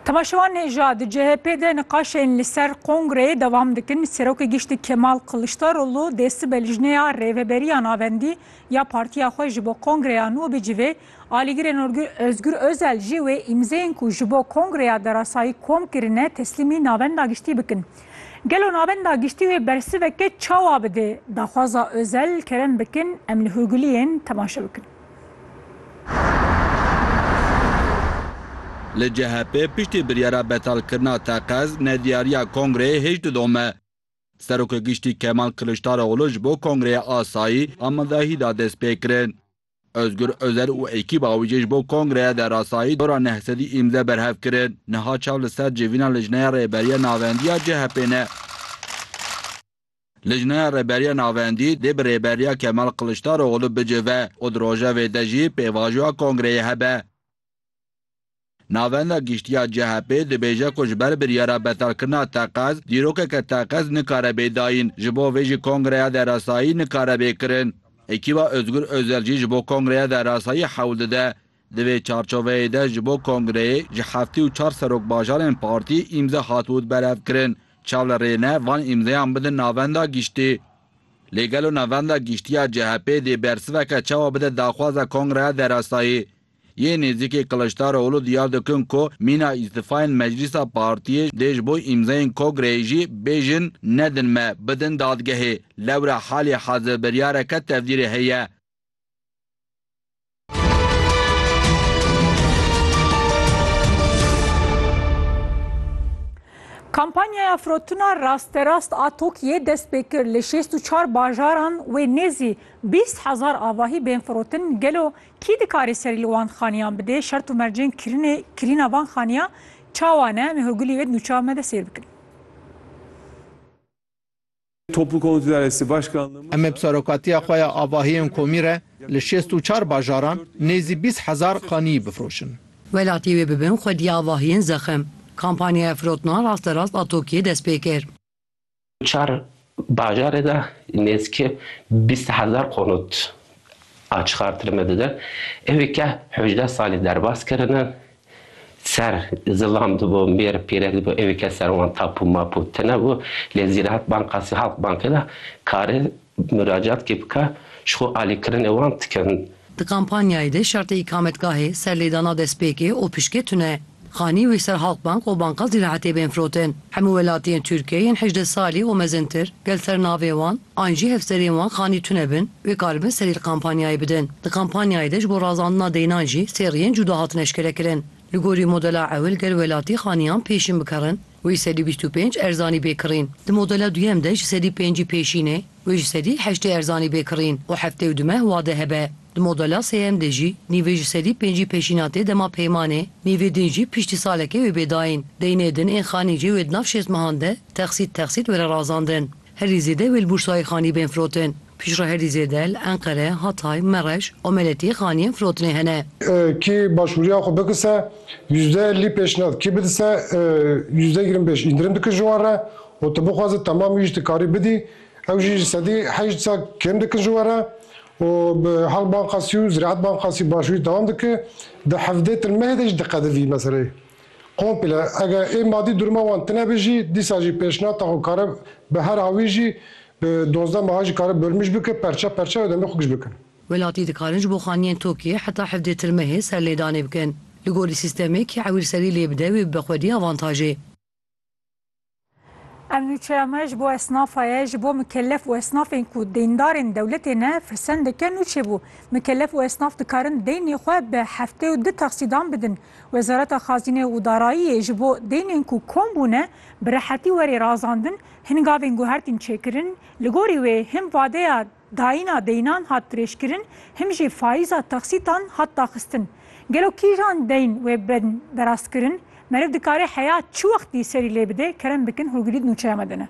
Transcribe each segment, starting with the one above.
Temaşevan hêja di CHP'ê de niqaşên li ser kongreyê dewam dikin. Serokê Giştî Kemal Kiliçdaroglu dê sibe lijneya rêveberiya navendî ya partiya xwe ji bo kongreya nû bicivê. Alîgirên Ozgur Ozel jî wê îmzeyên ku ji bo kongreya derasayî kom kirine teslîmî Navenda Giştî bikin. Gelo Navenda Giştî wê bersiveke çawa bidê? Daxwaza Ozel, Kerem Bikin, Emli Hurguliyên temaşe bikin. Li CHP'ê piştî biryara betalkirina teqez, nediyariya kongreyê hêj didome. Serokê Giştî Kemal Kiliçdaroglû ji bo kongreyê asayî amadehî da destpêkirin. Ozgur Ozer û ekîba wî jî ji bo kongreya derasayî dora neh sedî îmze berhev kirin. Niha çav li ser civîna Lijneya Rêberiya Navendiya CHP'ê ne. Lijneya Rêberiya Navendî dê bi rêberiya Kemal Kiliçdaroglu bicive û di rojevê de jî pêvajoya kongreyê hebe. Navenda Giştî ya CHP'ê dibêje ku ji ber biryara betalkirina teqez, dîrokeke teqez nikare bê dayîn, ji bo vê jî kongreya derasayî nikare bê kirin. Ekîba Ozgur Ozel jî ji bo kongreya derasayî hewl dide Di vê çarçoveyê de ji bo kongreyê ji heftî û çar serokbajarên partî îmze hat ûd berevkirin. Çav li rê ne van îmzeyan bidin Navenda Giştî. Lê gelo Navenda Giştî ya CHP'ê dê bersiveke çawa bide daxwaza kongreya derasayî? Yê nêzîkê Kiliçdaroglu diyar dikin ku mîna îstifayên meclîsa partiyê dê ji bo îmzeyên kogreyê jî bêjin nedin me bidin dadgehê. Lewra halî hezir biryareke tevdîrê heye. Kampanyaya firotina rasterast a TOKİ'yê dest pê kir. Li şêst û çar bajaran wê nêzî bîst hezar avahî bên firotin. Gelo kî dikarê serî li wan xaniyan bidê? Şert û mercên kirinê kirîna van xaniya çawa ne? Em ê hurgulî wê di nûçeya me de sêr bikin. Em bi serokatiya xwe ya avahiyên komî re li şêst û çar bajaran nêzî bîst hezar xaniyî bifroşin. Welatî wê bi bin xwedî avahiyên zexim. Kampanyaya firotina rasterast a Tokiyê dest pê kir. Çar bajarê de nêzîkî bîst hezar qonût a çixartirme didin. Ewê ke hejdeh salî derbas kirine Ser, zilam dibû, mêr, pîre dibû, evê kes ser wan tapû mapû tinebû, lê Zîraet Bankasî hat bankê de kare muracaatkî bike, ji xwe alîkirinê wan dikin. Di kampanyayê de şertê îkametgahê, serlêdana destpêkê û pişkê tune. Xanî wî ser Halkbank û Banka Zîraetê bên firotin. Hemû welatiyên Tirkiyê yên hejdeh salî û mezintir, gel ser navê wan, An jî hevserên wan xanî tune bin wê karibin serî li kampanyayê bidin. Di kampanyayê de ji bo razandina deynan jî sê riyên cuda hatin eşkerekirin. Li gorî modela ewil ger welatî xaniyan pêşîn bikarin wê sedî bîst û pênc erzanî bê kirîn. Di modela duyem de ji sedî pêncî pêşînê wê ji sedî heştê erzanî bê kirîn û heftê û du meh wade hebe. Di modela sêyem de jî nîvê ji sedî pêncî pêşîna tê dema peymanê, nîvê din jî piştî salekê wê bê dayîn. Deynê din ên xanî jî wê di nav şêst mehan de texsît texsît were razandin. Herî zêde wê li Bursayê xanî bên firotin. Piştre herî zêde li Enqere, Hatay, Mereş û Meletiyê xaniyên firotinê hene. Kî başvuriya xwe bikise yüzde ellî pêşniyaz, kî bidise yüzde yirmi pêş îndirim dikir ji wan re û tu bixwaze temam wî jî tu karî bidî ew jî ji sedî heşt sal kêm dikin ji we re û bi Halk Bankasî û Ziraet Bankasî başvurî dewam dike di hevdê tilmehê de jî diqedivî meseleyê. Komple, eger ê madî duruma wan tine bi jî, dîsa jî pêşnata xwe kare bi her awî jî bi dozdeh meha jî kare bölmüş bike, perçe perçe û demê xwe giş bikin. Welatî dikarin ji bo xaniyên tokê heta hevdê tirmehê serlêdanê bikin. Li gorî sîstemê kî ewîr serî lê bide wê bibe xwedî avantajê. Em nûçeya me ji bo esnafa ye, ji bo mikelef û esnafên ku deyndarên dewletê ne firsendeke nûçe bû. Mikelef û esnaf dikarin deynê xwe bi heftê û di taksîdan bidin. Wezareta Xazîne û Darayiyê ji bo deynên ku kom bûne bi rehetî were razandin, hin gavên guhertin çêkirin, li gorî wê hin vadeya Dayîna deynan hat dirêjkirin, him jî fayîza taksîtan hat daxistin. Gelo kîjan deyn wê bên berastkirin? Meriv dikare heya çi wextî serî lê bide? Kerem bikin hûrgilî di nûçeya me de ne.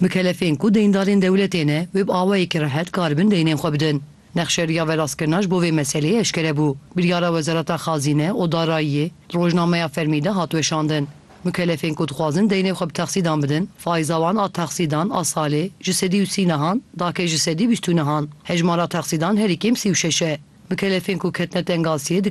Mikelefên ku deyndarên dewletê ne, wê bi awayekî rehet karibin deynên xwe bidin. Nexşeriya verastkirina ji bo vê meseleyê eşkere bû. Biryara Wezareta Xazîne û Darayiyê di rojnameya fermî de hat weşandin. Mikelefên ku dixwazin deynê xwe bi texsîdan bidin, faiza wan a texsîdan a salê ji sedî û sî nihan dake ji sedî bîst û nihan. Hejmara texsîdan herî kêm sî û şeş e. Mikelefên ku ketine tengasiyê dikarin